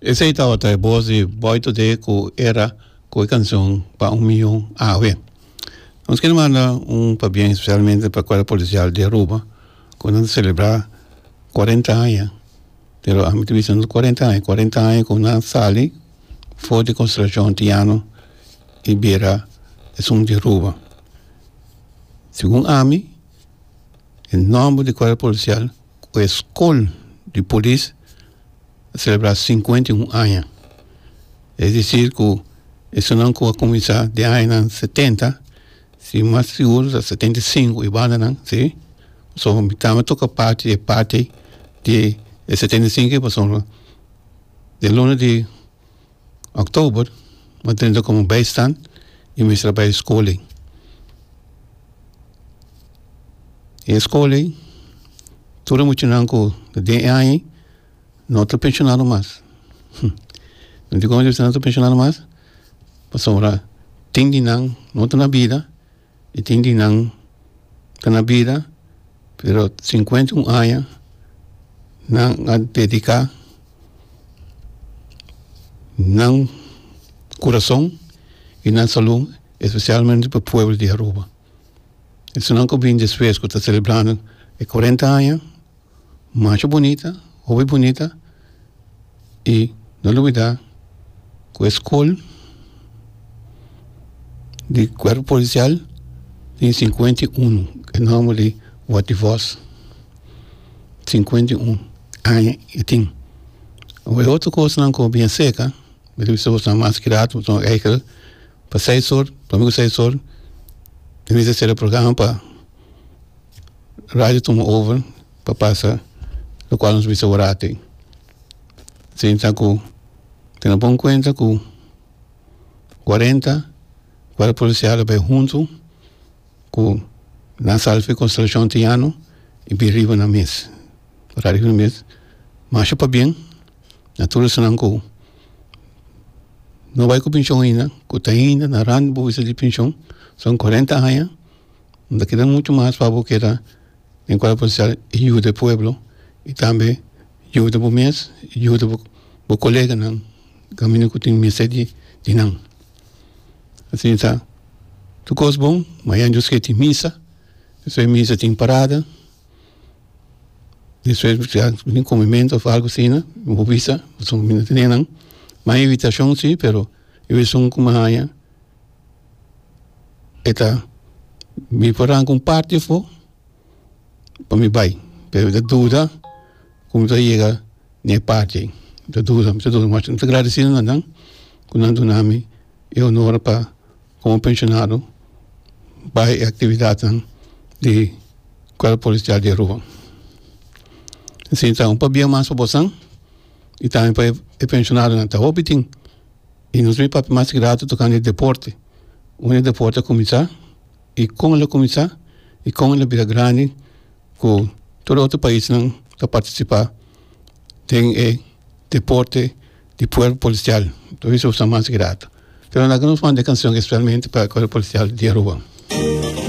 Esei tabata e bos di Boy Today ku era ku e kanson pa un miyon awe. Nos kere manda un pabien spesialmente pa Kuadro Polisial di Aruba ku nan ta selebrá kuarenta aña, pero ami ta bisa no kuarenta aña, kuarenta aña ku nan sali for di konsentrashon Antiñano i bira esun di Aruba. Segun ami e nòmber di Kuadro Polisial cu e Scol di Polis a celebra cincuenta y un aña. Es dicir cu esunnan cu a cuminsa den añanan setenta, si mas sigur ta setenta y cinco y bandanan, si, pasobra mi tambe toca parti di e parti di e setenta y cinco y pasobra den luna di. October mi trinta como bijstand y mi trabajo e scola y escola tur e muchanan cu ta dies y aña no ta pensionado mas mi dico no ta pensionado mas pasobra tin di nan no ta na bida. y tin di nan ta na bida pero cincuenta y un aña nan a dedica nan corazon y nan salud especialmente pa pueblo di Aruba esun nan cu a bini despues cu ta celebrando e cuarenta aña macho bunita hopi bunita y no lubida cu e scol di cuerpo policial tin cincuenta y uno e nomber di wativos cincuenta y uno aña y tin o e otro cosnan cu bien cerca mi ta bisa bo esnan mas cuidado bo ta tuma eyker pa seis or ta mey cu seis or mi ta bisa cera programa pa Radio ta un oven pa pasa lokual nos bisa orate sinta ta ku tene pon kuenta ku kuarenta guarda polisial a bai huntu ku nan salsa konstelashon tiano i bin riba nan mes ora riba nan mes masha pa bien na tur esanan ku no bai ku penshon aina ku ta ain na ran bo bisa di penshon son kuarenta aña. Bo ta keda mucho mas pa bo keda den cual bo ser yuda e pueblo y tambe yuda bo mes y yuda bo coleganan caminda cu tin mester di nan. Asina sa tur cos bon mayan dios ke tin misa despues misa tin parada despues ya tin comimento of algo asina bo bisa bo tin nan ma invitacion si pero esun coma haya. e ta bin for arranca un parti afo pa mi bay pero mi ta duda cu mi ta yega ne parti ey mi ta duda mi ta duda mi ta gradeci na nan cu nan duna mi e honor pa como pensionado bay e actividadnan di cuerpo policial di aruba sinta un pabia mas pa bosan y tambe pa e pensionadonan ta hopi tin. Y nos mi papia mas grato tocando e deporte. Unda e deporte a cuminsa y con el a cuminsa y con el a bira grandi cu tur e otro paisnan ta participa den e deporte di cuerpo policial. Por eso nos ta mas grato. Pero na nos manda e cancion especialmente pa e cuerpo policial di Aruba.